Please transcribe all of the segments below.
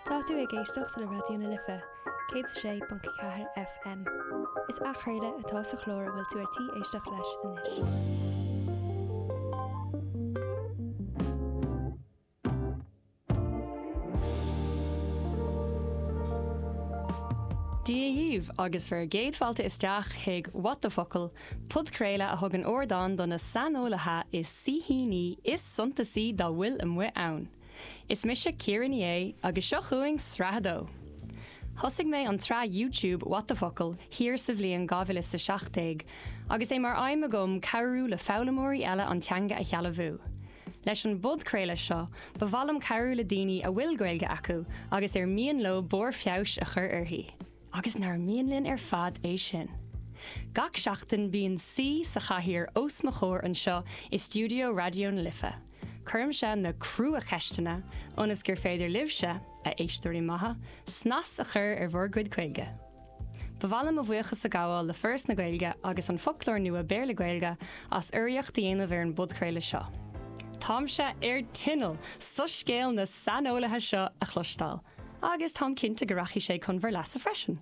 Tá tú ag éisteacht le Raidió na Life 106.4 FM. Is athchraoladh atá sa chlár a bhfuil tú ar tí éisteacht leis anois. Dia dhaoibh agus bhur gcéad fáilte isteach chuig What the Focal! Podchraoladh a thugann ardán do na saineolaithe is saoithíní is suntasaí dá bhfuil amuigh ann. Is mise Ciara Ní É agus seo chugainn Sraith a Dó! Thosaigh mé an tsraith YouTube What the Focal! thiar sa bhliain dhá mhile is a seacht déag agus é mar aidhm agam cabhrú le foghlaimeoirí eile an teanga a shealbhú. Leis an bpodchraoladh seo, ba mhaith liom cabhrú le daoine a bhfuil Gaeilge acu agus ar mian leo barr feabhais a chur uirthi. Agus nár mhian linn ar fad é sin? Gach seachtain bíonn saoi sa chathaoir os mo chomhair anseo i stiúideo Raidió na Life. Cuirimse na crua-cheisteanna ionas gur féidir libhse, a éisteoirí maithe, snas a chur ar bhur gcuid Gaeilge. Ba mhaith liom mo bhuíochas a ghabháil le Foras na Gaeilge agus An Foclóir Nua Béarla-Gaeilge as urraíocht a dhéanamh ar an bpodchraoladh seo. Táimse ar tinneall soiscéal na saineolaithe seo a chloisteáil! agus táim cinnte go rachaidh sé chun bhur leasa freisin.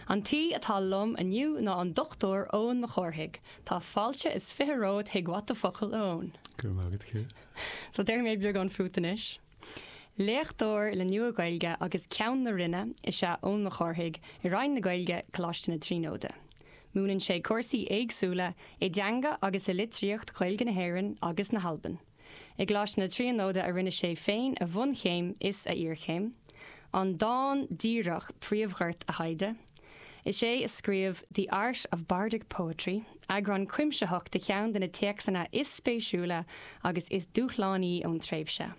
An t-aoi atá liom inniu ná an Dr. Eoin Mac Cárthaigh. Tá fáilte is fiche romhat chuig What the Focal, a Eoin! Go raibh maith agat, Ciara. So, déarfaidh mé beagán fút anois. Léachtóir le Nua-Ghaeilge agus Ceann na Roinne is ea Eoin Mac Cárthaigh i Roinn na Gaeilge, Coláiste na Tríonóide. Múineann sé cúrsaí éagsúla i dteanga agus i litríocht Ghaeilge na hÉireann agus na hAlban. I gColáiste na Tríonóide a rinne sé féin a bhunchéim is a iarchéim, an dán díreach príomh-ghort a thaighde. Is é a scríobh The Art of Bardic Poetry, eagrán cuimsitheach de cheann de na téacsanna is spéisiúla agus is dúshlánaí ón tréimhse.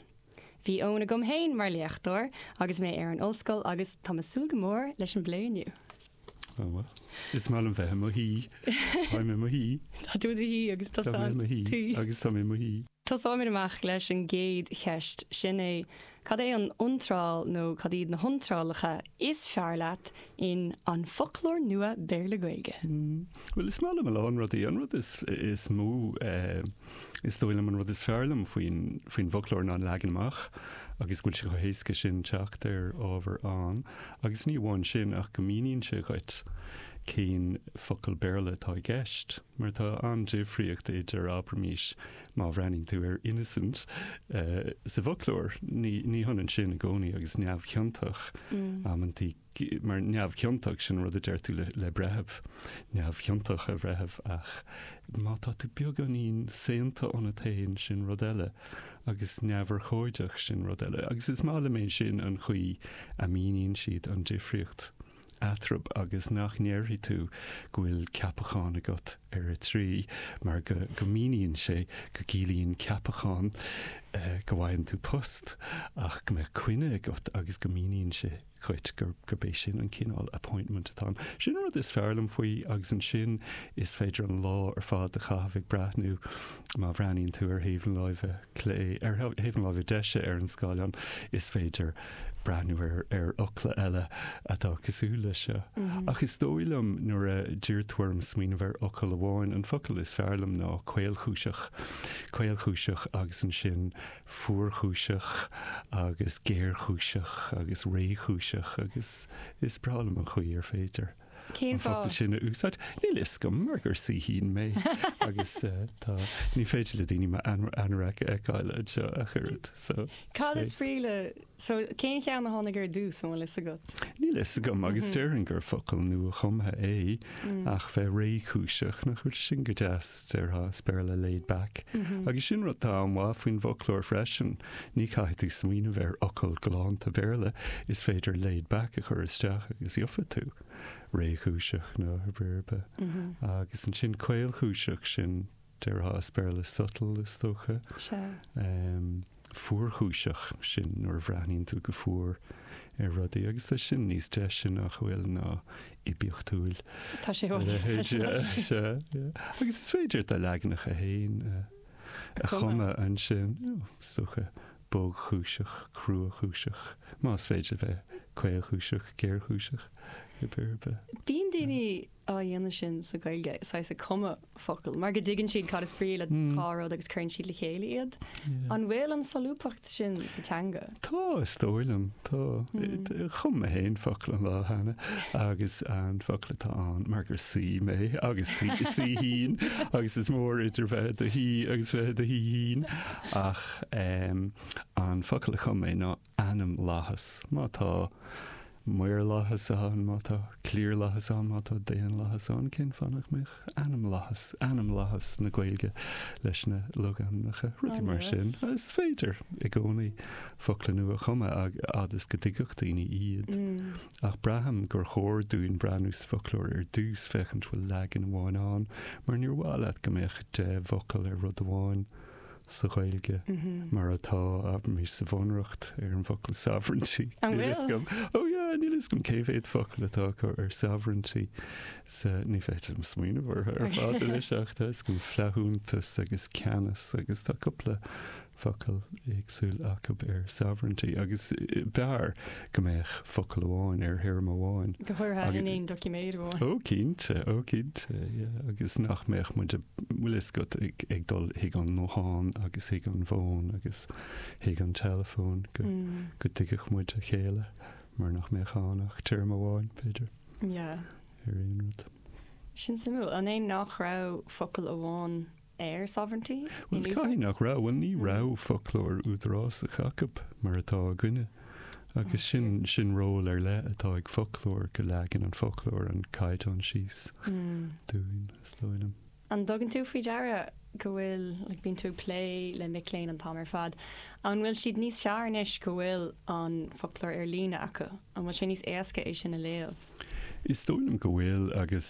Bhí Eoin agam féin mar léachtóir agus mé ar an ollscoil agus tá me súil go mór leis an bplé inniu. Oh well. Is maith liom bheith i mo shuí. Táim i mo shuí. Tá tú i do shuí agus tusa an t-aoi. Agus táim i mo shuí. Tosóimid amach leis an gcéad cheist, sin é, cad é an iontráil nó cad iad na hiontrálacha is fearr leat in An Foclóir Nua Béarla-Gaeilge? Bhuel, is maith liom a lán rudaí. An rud is mó Is dóigh liom an rud is fearr liom faoin, faoin bhfoclóir ná an leagan amach agus go bhfuil sé chomh héasca sin teacht ar ábhar ann agus ní amháin sin ach go míníonn sé dhuit cén focal Béarla atá i gceist mar tá an-difríocht idir, abraimís, má bhreathnaíonn tú ar innocent sa bhfoclóir, ní, ní hionann sin i gcónaí agus neamhchiontach, amantaí mar neamhchiontach, sin an rud a deir tú le breitheamh, neamhchiontach, a bhreithimh, ach má tá tú beagáinín saonta ionat féin, sin rud eile, agus neamhurchóideach, sin rud eile. Agus is maith liom é sin an chaoi a míníonn siad an difríocht eatrab agus nach ndéarfaidh tú go bhfuil ceapachán agat ar a 3 mar go go míníonn sé go gciallaíonn ceapachán go bhfaigheann tú post ach go mbeadh coinne agat agus go míníonn sé dhuit gur gurb é sin an cineál appointment atá ann. Sin an rud is fearr liom faoi agus ansin is féidir an lá ar fad a chaitheamh ag breathnú má bhreathnaíonn tú ar thaobh na láimhe clé, ar thaobh na láimhe deise ar an scáileán, is féidir breathnú ar ar fhocla eile atá cosúil leis seo. Ach is dóigh liom nuair a d'iarr tú orm smaoineamh ar fhocal amháin, an focal is fearr liom ná caolchúiseach. Caolchúiseach agus ansin. fuarchúiseach agus géarchúiseach agus réchúiseach agus is breá liom an chaoi ar féidir Cén an fáth? an focal sin a úsáid. Níl a fhios agam mar gur saoithín mé agus eh, tá, ní féidir le daoine m'anorac a fheiceáil anseo ach oiread so Cad is brí le So, cén cheann a tháinig ar dtús, an bhfuil fhios agat? Níl fhios agam agus déarfainn gur focal nua-chumtha é ach bheith réchúiseach, nach bhfuil sin go deas? Déarfá as Béarla laid back. Agus sin rud atá an-mhaith faoin bhfoclóir freisin, ní chaithfidh tú smaoineamh ar fhocal galánta Béarla, is féidir laid back a chur isteach agus gheofa tú réchúiseach nó agus ansin caolchúiseach, sin Déarfá as Béarla subtle, is dócha. Sea. Fuarchúiseach, sin nuair a bhreathnaíonn tú go fuar ar rudaí agus tá sin níos deise nach bhfuil ná oibiachtúil. Tá sé chomh deise leis sin. Sea, sea, yeah. Agus is féidir do leaganacha fhéin a a chumadh ansin, you know, is dócha bogchúiseach, cruachúiseach, más féidir bheith caolchúiseach, géarchúiseach, in áit ar bith. Bíonn daoine á dhéanamh sin sa Ghaeilge, saghas ag cumadh focal, mar go dtuigeann siad cad is brí le dhá rud agus cuireann siad le chéile iad. An bhfuil an solúbthacht sin sa teanga? Tá, is dóigh liom. Tá. Chum mé féin focal an lá cheana agus an focal atá ann, mar gur saoi mé, agus saoithín, agus is mór idir bheith i do shaoi agus bheith i do shaoithín, ach an focal a chum mé ná ainmlathas, má tá maorlathas ann, má tá cliarlathas ann, má tá daonlathas ann, cén fáth nach mbeadh ainmlathas, ainmlathas na Gaeilge leis na logainmneacha, rudaí mar sin. Is féidir i gcónaí focla nua a chumadh a fhad is go dtuigfeadh daoine iad. Ach braithim gur chóir dúinn breathnú sa bhfoclóir ar dtús, féachaint bhfuil leagan amháin ann, mar níor mhaith leat go mbeadh deich bhfocal ar rud amháin. sa Ghaeilge mar atá abraimis sa Bhunreacht ar an bhfocal sovereignty. An bhfuil? Níl fhios agam. Oh yeah, níl fhios agam cé mhéad focal atá acu ar sovereignty sa, ní fhéadaim smaoineamh orthu ar fad anois ach tá fhios agam flaithiúnas agus ceannas agus tá cúpla focal éagsúil acu ar sovereignty agus b'fhearr go mbeadh focal amháin ar théarma amháin. Go háirithe in aon doiciméad amháin. Ó cinnte, ó cinnte, yeah, agus nach mbeadh muid ag, bhuel is go ag dul chuig an nguthán agus chuig an bhfón agus chuig an teileafón go, go dtuigfeadh muid a chéile mar nach mbeadh ann ach téarma amháin, b'fhéidir, ar aon rud. Sin suimiúil, an é nach raibh focal amháin? ar sovereignty in Bhuel, caithfidh nach raibh, bhuel ní raibh foclóir údarásach acu mar atá againne agus sin, sin ról ar leith atá ag foclóir, go leagann an foclóir an caighdeán síos dúinn, is dóigh liom. An dtugann tú faoi deara go bhfuil, like bíonn tú ag plé le mic léinn an t-am ar fad, an bhfuil siad níos fearr anois go bhfuil an foclóir ar líne acu, an bhfuil sé níos éasca é sin a léamh? Is dóigh liom go bhfuil agus,